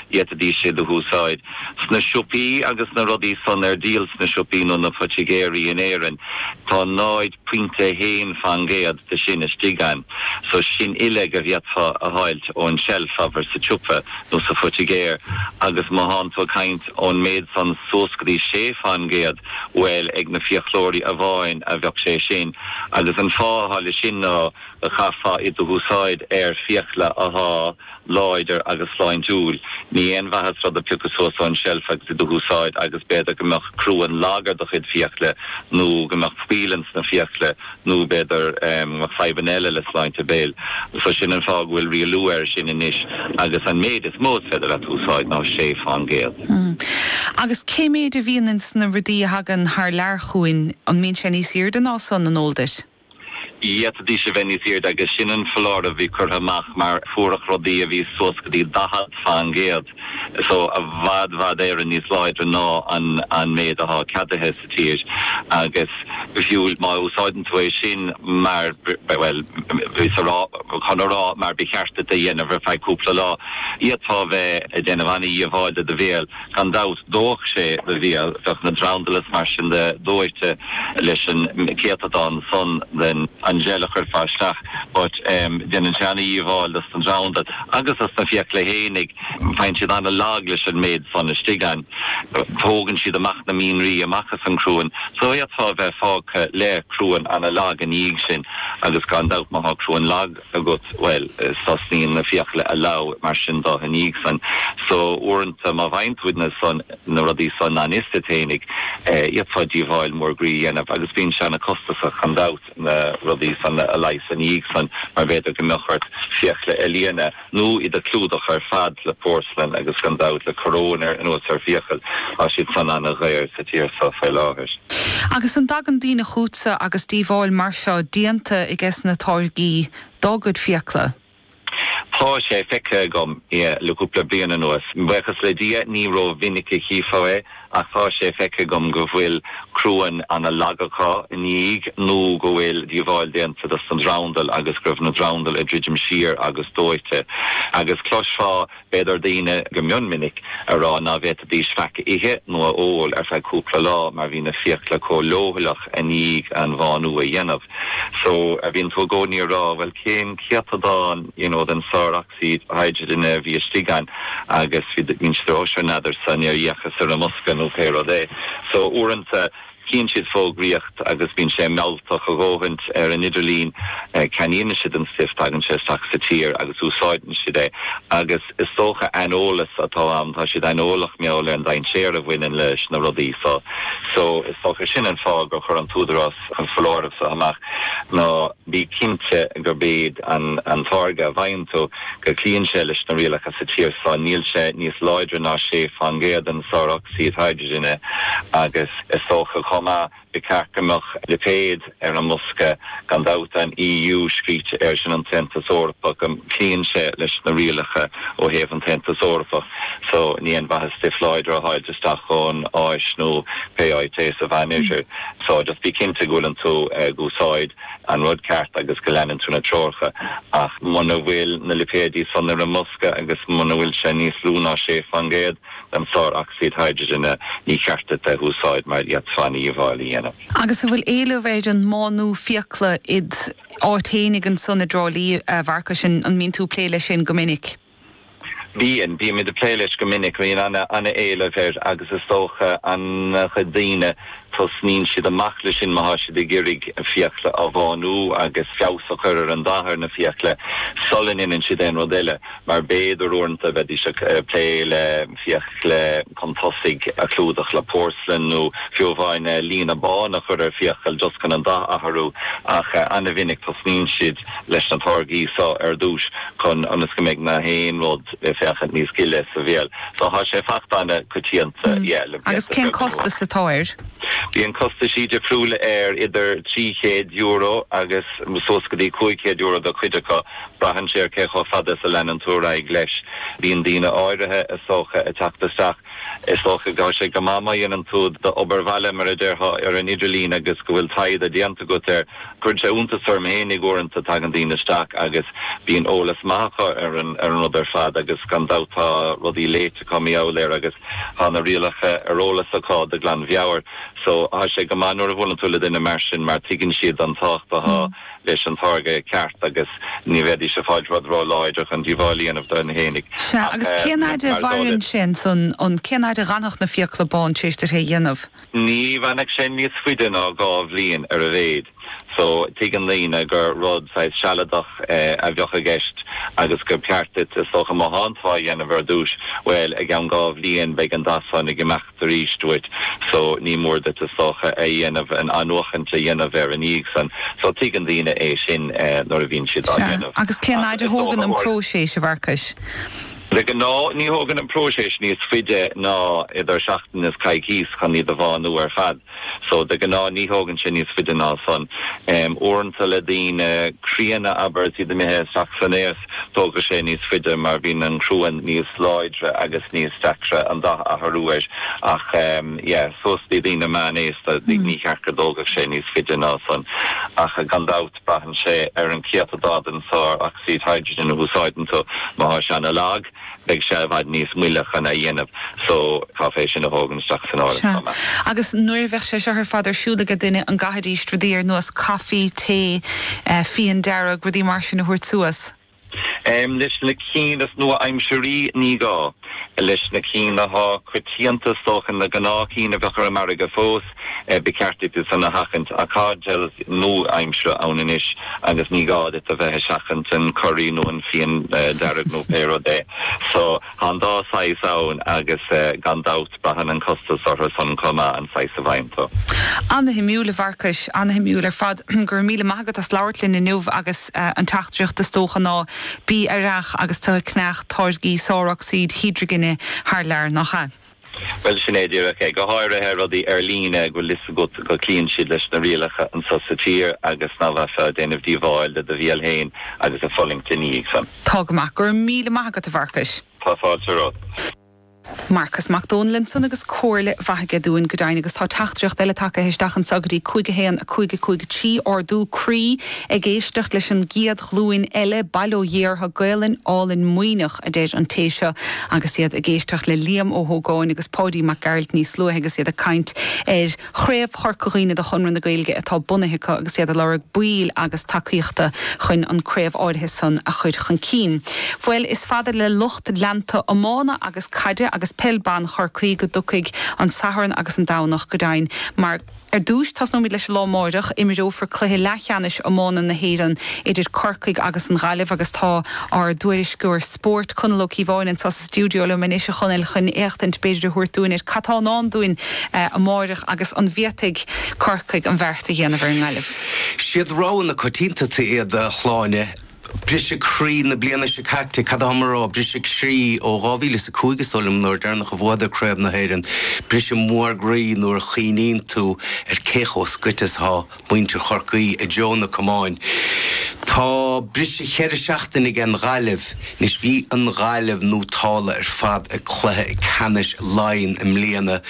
D'fhéadfaidís iad a húsáid sna siopaí agus na rudaí san ar díol sna siopaí nó na poitigéirí in Éirinn. Tá 0.1 fan gcéad de sin istigh ann so sin uileag a bhféadfá a fháilt ón tseilf, abair, sa tsiopa nó sa phoitigéir agus má thánn tú ag caint ón méid san suas go dtí sé fan gcéad, bhuel, ag na fiaclóirí amháin a bheadh sé sin agus an fáth athá le sin ná go chaithfeá iad a húsáid ar fiacla athá, láidir agus sláintiúil. Ní haon mhaitheas rud a phiocadh suas ón tseilf agus iad a húsáid agus b'fhéidir go mbeadh cruan lag ar do chuid fiacla nó go mbeadh poill in sna fiacla nó b'fhéidir go mbeadh fadhbanna eile le sláinte béil. So sin an fáth go bhfuil rialú ar sin anois agus an méid is mó is féidir leat úsáid ná sé fán gcéad. Agus cé méid a bhíonn in sna rudaí a thagann thar lear chugainn, an mbíonn sé níos aoirde ná san, an eol duit? D'fhéadfaidís a bheith níos airde agus sin an foláireamh a bhí curtha amach mar fuaireadh rudaí a bhí suas go dtí 40%, so i bhfad bhfad Éireann níos láidre ná an méid athá ceadaithe sa tír agus fiú má úsáideann tú é sin mar, bhuel, bhíos a rá, chun a rá, mar ba cheart duit é dhéanamh ar feadh cúpla lá, fhéadfá a bheith ag déanamh ana-dhíobháil do do bhéal. Gan dabht, dhófadh sé do bhéal, bheadh na drandail is mar sin de dóighte leis an céatadán san den an gel a chuirfeá isteach, but em, déanann sé ana-dhíobháil dos na drandail agus dos na fiacla fhéinig, faigheann siad ana-lag leis an méid san istigh ann. Tógann siad amach na mianraí amach as an cruan so fhéadfá a bheith fágtha le cruan ana-lag ina dhiaidh sin agus gan dabht má thá cruan lag, agat, bhuel, tosnaíonn na fiacla a lobhadh mar sin de ina dhiaidh san. So, uaireanta, má fhaigheann tú na san, na rudaí san an iostat fhéinig, fhéadfá díobháil mór groí a dhéanamh agus bíonn sé ana costasach, gan dabht, na rudaí san a leigheas ina dhiaidh san mar b'fhéidir go mbeadh ort fiacla a líonadh nó iad a clúdach ar fad le porcelain agus gan dabht le coróin ar anuas ar fiacal tá siad san ana dhaor. tír seo faoi láthair. Agus an dtagann daoine chughatsa agus díobháil mar seo déanta aiges na táirgí dá gcuid fiacla? Tá sé feicthe agam é le cúpla bliain anuas. Buíochas le Dia, ní ró-mhinic a chífeá é, ach tá sé feicthe agam go bhfuil cruan ana lag acu ina dhiaidh nó go bhfuil díobháil déanta dos na drandail agus go raibh na drandail ag druidim siar agus dóighte. Agus cloisfeá. B'fhéidir daoine go mion minic a rá ná féadfaidís faic a ithe nó a ól ar feadh cúpla lá mar bhí na fiacla comh leochaileach i ndiaidh an bhánú a dhéanamh. So, bíonn tú i gcónaí ag rá, bhuel, cén céatadán, you know, den sárocsaíd hidrigine a bhí istigh ann agus bíonn siad a rá, oh, sure, n'fheadarsa, níor fhéachas ar an mbosca nó pé rud é. So, uaireanta. Chíonn siad fógraíocht agus bíonn sé mealltach a dhóthaint ar an idirlíon. Ceannaíonn siad an stuif, tagann sé isteach sa tír agus úsáideann siad é. Agus is dócha aineolas atá ann, tá siad aineolach mar gheall ar an dainséar a bhaineann leis na rudaí seo. So is dócha sin an fáth gur chuir an tÚdarás an foláireamh seo amach ná, Bí cinnte gurb é an táirge a bhfaigheann tú go gcloíonn sé leis na rialacha sa tír seo. Níl sé níos láidre ná 6% den sár-ocsaíd hidrigine agus is dócha chomh maith. Ba cheart go mbeadh lipéad ar an mbosca gan dabht, an EU scríte air sin, an tAontas Eorpach, go gcloíonn sé leis na rialacha ó thaobh an tAontas Eorpach so. Ní aon mhaitheas stuif láidir a fháilt isteach ón Áis nó pé áit é sa Mheánoirthear. So, just bí cinnte go bhfuileann tú ag úsáid an rud ceart agus go leanann tú na treoracha. Ach muna bhfuil na lipéidí san ar an mbosca agus muna bhfuil sé níos lú ná 6 faoin gcéad den sár ocsaíd hidrigine, ní cheart duit é a úsáid mar fhéadfá an-dhíobháil a dhéanamh. Agus an bhfuil éileamh ar an mbánú fiacla id áit fhéinig ansan i dTrá Lí, a Mharcais? An mbíonn tú ag plé leis sin go minic? Bíonn. Bímid ag plé leis go minic. Bíonn ana éileamh air agus is dócha ana chuid daoine tosnaíonn siad amach leis sin má thá siad ag iarraidh a fiacla a bhánú agus feabhas a chur ar an dath ar na fiacla sula ndéanann siad aon rud eile mar b'fhéidir uaireanta bheidís ag plé le fiacla chun tosaigh a chlúdach le porcelain nó fiú amháin líonadh bán a chur ar fiacail just chun an dath a athrú ach ana mhinic tosnaíonn siad leis na táirgí seo ar dtúis chun ionas go mbeidh na haon rud ag féachaint níos gile sa bhéal. So tá sé ag fáilt ana choitianta yeah le blianta beaga anuas. Agus cén costas atá air? Bíonn costaisí difriúla air idir €300 agus suas go dtí €500 do chuid acu. Braitheann sé ar cé chomh fada is a leanann tú ar aghaidh leis. Bíonn daoine áirithe is dócha ag teacht isteach Is dócha go raibh sé go maith má dhéanann tú d'obair bhaile mar a déarfá ar an idirlíon agus go bhfuil taighde déanta agat air Cuireann sé iontas orm fhéinig uaireanta, tagann daoine isteach agus bíonn eolas maith acu ar an rud ar fad agus gan dabht tá rudaí léite acu, mar gheall air agus tá na rialacha ar eolas acu de ghlan mheabhair. So tá sé go maith nuair a bhuaileann tú le duine mar sin mar tuigeann siad an tábhacht atá leis an táirge ceart agus ní bheidís ag fáil rud ró láidir chun díobháil a dhéanamh dóibh fhéinig. Sea, agus cén fhaid a mhaireann sé ansan, an, cén fhaid a d'fhanfadh na fiacla bán, tréis duit é a dhéanamh? Ní leanfadh sé níos faide ná dhá bhliain ar a mhéid, so tuigeann daoine gur rud saghas sealadach a bheadh i gceist agus gur ceart duit, is dócha, má thánn tú á dhéanamh ar dtúis, bhuel, i gceann dhá bhliain beidh an dath san ag imeacht arís uait so ní mór duit, is dócha, a dhéanamh, an athnuachaint a dhéanamh air i ndiaidh san. So tuigeann daoine é sin nuair a bhíonn siad á dhéanamh. Sea. Agus cén fhaid a thógann an próiseas, a Mharcais? De ghnáth ní thógann an próiseas níos faide ná idir seachtain is coicíos chun iad a bhánú ar fad. So de ghnáth ní thógann sé níos faide ná san. Uaireanta le daoine críonna, abair, is iad imithe isteach san aos, tógfaidh sé níos faide mar bíonn an cruan níos láidre agus níos deacra an dath a athrú air. Ach yeah, suas do dhaoine meánaosta, níor cheart go dtógfadh sé níos faide ná san ach gan dabht. Braitheann sé ar an céatadán den sár ocsaíd hydrogen a úsáideann tú. Má thá sé ana lag, beidh sé i bhfad níos moille chun é a dhéanamh so caithfear é sin a thógaint isteach san áireamh Sea. chomh maith. Agus nuair a bheadh sé seo ar fad ar siúl aige duine, an gcaithfidís rudaí ar nós caife, tae, fíon dearg, rudaí mar sin a thabhairt suas? Leis na cinn is nua-aimsirí, ní gá. Leis na cinn athá coitianta is dócha, na gnáth cinn a bheadh ar an margadh fós, ba cheart duit iad san a sheachaint. Tá geil nua-aimsire ann anois agus ní gá duit a bheith ag seachaint an curry nó an fíon dearg nó pé rud é. Tá an dá shaghas ann agus gan dabht braitheann an costas orthu san chomh maith an saghas a fhaigheann tú. Ana-shuimiúil a Mharcais, ana-shuimiúil ar fad. Go raibh míle maith agat as labhairt linn inniu agus an teachtaireacht is dócha ná bí aireach agus tú ag ceannach táirgí sárocsaíd hídrigine thar lear, nach ea? Bhuel, sin é díreach é. Go háirithe rudaí ar líne go bhfuil a fhios agat go cloíonn siad leis na rialacha anseo sa tír agus nach mbeifeá ag déanamh díobháil do do bhial fhéin agus ag fulaingt ina dhiaidh san. Tá go maith. Go raibh míle maith agat, a Mharcais. Tá fáilte romhat. Marcas Mac Domhnaill ansan agus comhairle mhaith aige dúinn, go deimhin, agus tá teachtaireacht eile tagtha isteach anseo go dtí 51 5 5 3, ardú croí. Ag éisteacht leis an gcéad ghlúin eile, bail ó Dhia orthu, Gaolainn álainn maoithneach, a deir an té seo agus iad ag éisteacht le Liam Ó hÓgáin agus Páidí Mac Gearailt níos luaithe agus iad ag caint ar Chraobh Chorca Dhuibhne de Chonradh na Gaeilge atá bunaithe acu agus iad ag lorg baill agus tacaíochta chun an craobh áirithe san a chur chun cinn. Bhuel, is fada le lucht leanta iomána agus caide agus peil ban Chorcaí go dtiocfaidh an Satharn agus an Domhnach, go deimhin, mar. Ar dtúis, tosnóimid leis an lá amáireach. Imreofar cluiche leathcheannais iomána na hÉireann idir Corcaigh agus an Ghaillimh agus tá ár dtuairisceoir spóirt, Conall Ó Cíobháin, anseo sa stiúideo liom anois, a Chonaill, chun éachtaint b'fhéidir a thabhairt dúinn ar cad tá i ndán dúinn amáireach agus an bhféadfaidh Corcaigh an beart a dhéanamh ar an nGaillimh? Siad roghanna coitianta iad, a Shláine. Briseadh croí na bliana seo caite. Cad athám a rá? Briseadh croí ó 2005 is dóigh liom, an uair dheireanach a bhuadar Craobh na hÉireann. Briseadh mór croí nuair a chuimhníonn tú ar cé chomh scoite is atá muintir Chorcaí i dtreo an chamáin. Tá briseadh cheithre seachtaine aige an Ghaillimh. Anois bhí an Ghaillimh nótálta ar fad ag cluiche ceannais Laighean i mbliana.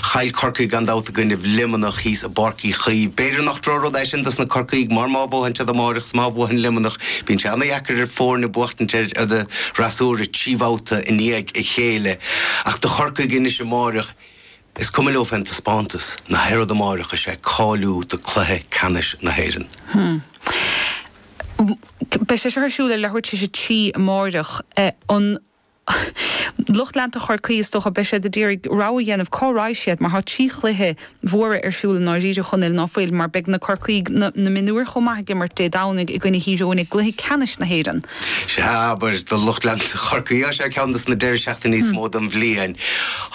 Chaill Corcaigh gan dabht i gcoinnibh Luimneach thíos. i bPáirc Uí Chaoimh. B'fhéidir nach drochrud é sin dos na Corcaígh mar má bhuadhann siad amáireach 's má bhuadhann Luimneach bíonn sé ana-dheacair ar foirne buachtaint ar fhreasúra trí bhabhta i ndiaidh a chéile ach do Chorcaigh anois amáireach is cuma leo fén dtaispeántas ná haon rud amáireach is é cáiliú do chluiche ceannais na hÉireann. Beidh sé seo ar siúl ar leathuair tar éis a trí amáireach. Lucht leanta Chorcaí, is dócha, beidh siad ag d'iarraidh rogha a dhéanamh cá raghaidh siad mar tá trí chluiche mhóra ar siúl i ndáiríre, chonn ná fuil, mar beidh na Corcaígh, na mionúir chomh maith, ag imirt Dé Domhnaigh i gcoinne Thír Eoghain i gcluiche ceannais na hÉireann. Sea, abair, do lucht leanta Chorcaí, seo é ceann dos na deiridh seachtaine is mó den bhliain.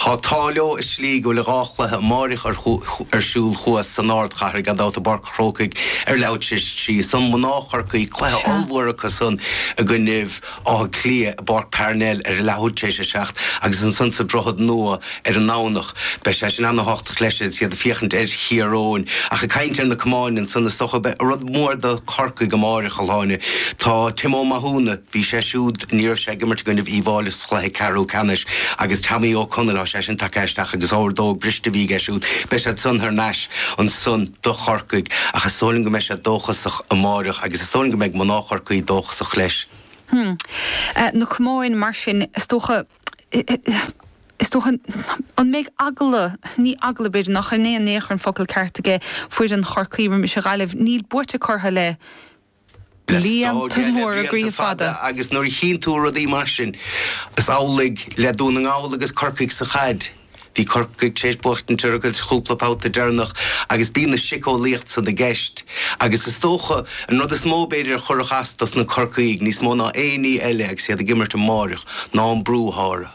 Tá an t-ádh leo i slí go bhfuil dhá chluiche amáireach ar siúl thuas san ardchathair, gan dabht, i bPáirc an Chrócaigh ar leathuair tar éis a trí ansan mná Chorcaí, cluiche ollmhór acusan i gcoinnibh. Átha Cliath, i bPáirc Parnell ar a leathuair tar éis a seacht agus ansan sa Droichead Nua ar an nDomhnach. Beidh sé sin ana-thábhachtach leis agus iad ag féachaint ar Thír Eoghain. Ach ag caint ar na camáin ansan, is dócha, an rud mór do Chorcaigh amáireach, a Shláine. Tá Tim Ó Mathúna, bhí sé siúd, ní raibh sé ag imirt i gcoinnibh Uíbh Fháilí sa chluiche ceathrú ceannais, agus Tommy Ó Conaill, tá sé sin tagtha isteach agus ordóg briste a bhí aige siúd. Beidh siad san thar n-ais ansan do Chorcaigh. Ach is dóigh liom go mbeidh siad dóchasach amáireach agus is dóigh liom go mbeidh mná Chorcaí dóchasach. chomh maith leis. Hm. Na camáin, mar sin, is dócha, is dócha, an mbeidh eagla, ní eagla, b'fhéidir, nach in é in aon chor an focal ceart ag foireann Chorcaí roimis an Ghaillimh, níl buaite orthu le blianta móra, blianta fada agus nuair a chíonn tú rudaí mar sin, is amhlaidh le Dún na nGall agus Corcaigh sa chaid. Bhí Corcaigh tar éis buachtaint orthu an cúpla babhta deireanach agus bíonn an tsíceolaíocht san i gceist. Agus is dócha, an rud is mó, b'fhéidir, a chuirfeadh as dos na Corcaígh níos mó ná aon ní eile agus iad ag imirt amáireach ná an brú atá orthu.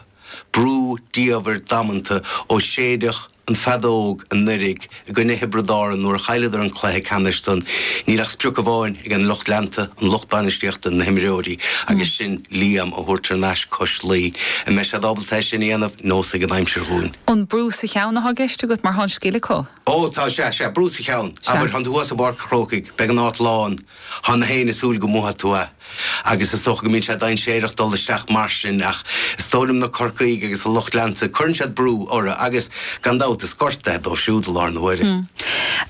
Brú diamhair damanta ó séideadh an fheadóg anuiridh. i gcoinne Thiobraid Árann nuair a chailleadar an cluiche ceannais san, níl ach sprioc amháin ag an lucht leanta, an lucht bainistíochta, na himreoirí, agus sin Liam a thabhairt thar n-ais cois Laoi. An mbeidh siad ábalta é sin a dhéanamh neosfaidh an aimsir dhúinn? An brú sa cheann atá i gceist agat, mar thá an scil acu? Ó, tá, sea, sea, brú sa cheann. Sea. Abair, téann tú suas go Páirc an Chrócaigh, beidh an áit lán. Thá gach éinne ag súil go mbuafaidh tú é. Agus is dócha go mbíonn sé dainséireach dul isteach mar sin ach is dóigh liom na Corcaígh agus a lucht leanta, cuireann siad brú orthu agus, gan dabht, is gorta é dóibh siúd i láthair na huaire.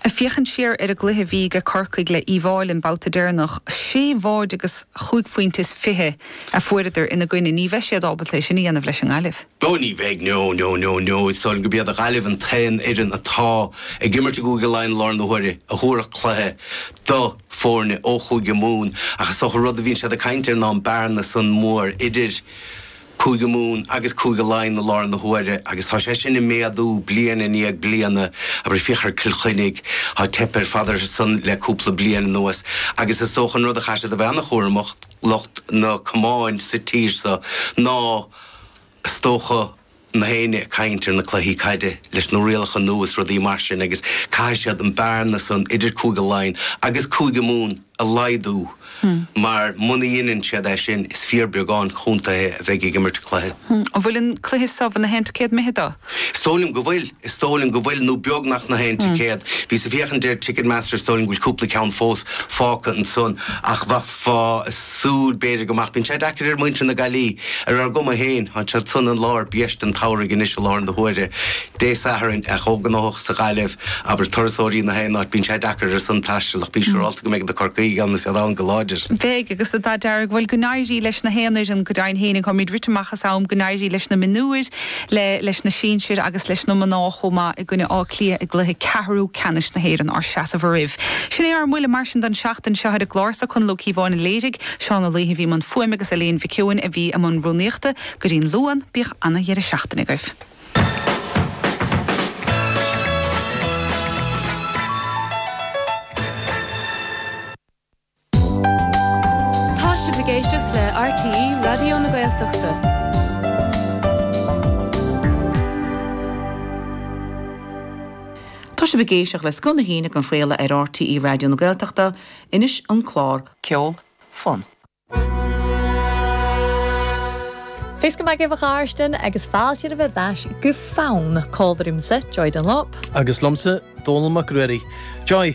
Ag féachaint siar ar an gcluiche a bhí ag Corcaigh le Uíbh Fháilí an babhta deireanach, sé bháid agus chúig phointe is fiche a fuaireadar ina gcoinne. Ní bheidh siad ábalta é sin a dhéanamh leis an nGaillimh. Bhuel ní bheidh, no, no, no, no, is dóigh liom go b'iad Gaillimh an t-aon fhoireann atá ag imirt i gCúige Laighean i láthair na huaire a thabharfadh cluiche do foirne ó Chúige Mumhan ach is dócha rud a bhíonn siad ag caint air ná an bearna san mór idir Cúige Mumhan agus Cúige Laighean i láthair na huaire agus tá sé sin ag méadú bliain i ndiaidh bliana, abair féach ar Cill Chainnigh, tá teipthe ar fad orthu san le cúpla bliain anuas agus is dócha an rud a chaithfidh siad a bheith an-chúramach, lucht na gcamán sa tír seo, ná. is dócha, na héinne ag caint ar na cluichí caide leis na rialacha nua is rudaí mar sin agus caithfidh siad an bearna san idir Cúige Laighean agus Cúige Mumhan a laghdú mar muna dheineann siad é sin is fíor beagán contaetha a bheidh ag imirt an chluiche. An bhfuil an cluiche so na haon ticéad imithe dó? Is dóigh liom go bhfuil. Is dóigh liom go bhfuil, nó beagnach na haon ticéad. Bhíos ag féachaint ar Ticketmaster, is dóigh liom go bhfuil cúpla ceann fós fágtha ansan, ach bheifeá ag súil b'fhéidir go mbeadh. Bíonn sé deacair ar mhuintir na Gaillí, ar ár gcuma féin, tá siad san i lár bhiaiste an tsamhraidh anois, i láthair na huaire, Dé Sathairn, ana-ghnóthach sa Ghaillimh, abair, turasóirí na haon áit, bíonn sé deacair orthu san taisteal, ach bí siúrálta go mbeidh na Corcaígh ann, is iad ann go láidir. Beidh, agus an dath dearg. Bhuel, go n-éirí leis na haon fhoireann, go deimhin féin, táimid rite amach as am, go n-éirí leis na mionúir, le leis na sinsir agus leis na mná chomh maith i gcoinne Átha Cliath i gcluiche ceathrú ceannais na hÉireann ár seasamh oraibh. Sin é ár mbuille mar sin don tseachtain seo ar an gclár sa Conall Ó Cíobháin a léirigh, Seán Ó Laoithe a bhí i mbun fuaime agus Eilín Mhic Eoin a bhí i mbun rúnaíochta. Go dtí an Luan, bíodh ana-dheireadh seachtaine agaibh. Tá sibh ag éisteacht le RTÉ Raidió na Gaeltachta. Tá sibh ag éisteacht le Scoil na hAoine ag an chraoladh ar RTÉ Raidió na Gaeltachta, anois an clár. Ceol, fonn. Fé's go mbeidh uibh gharstin agus fáilte roimh ar ais go fonn. Call roimsa, Joy Dunlop. Agus liomsa, Dónal Mac Ruairí. Joy!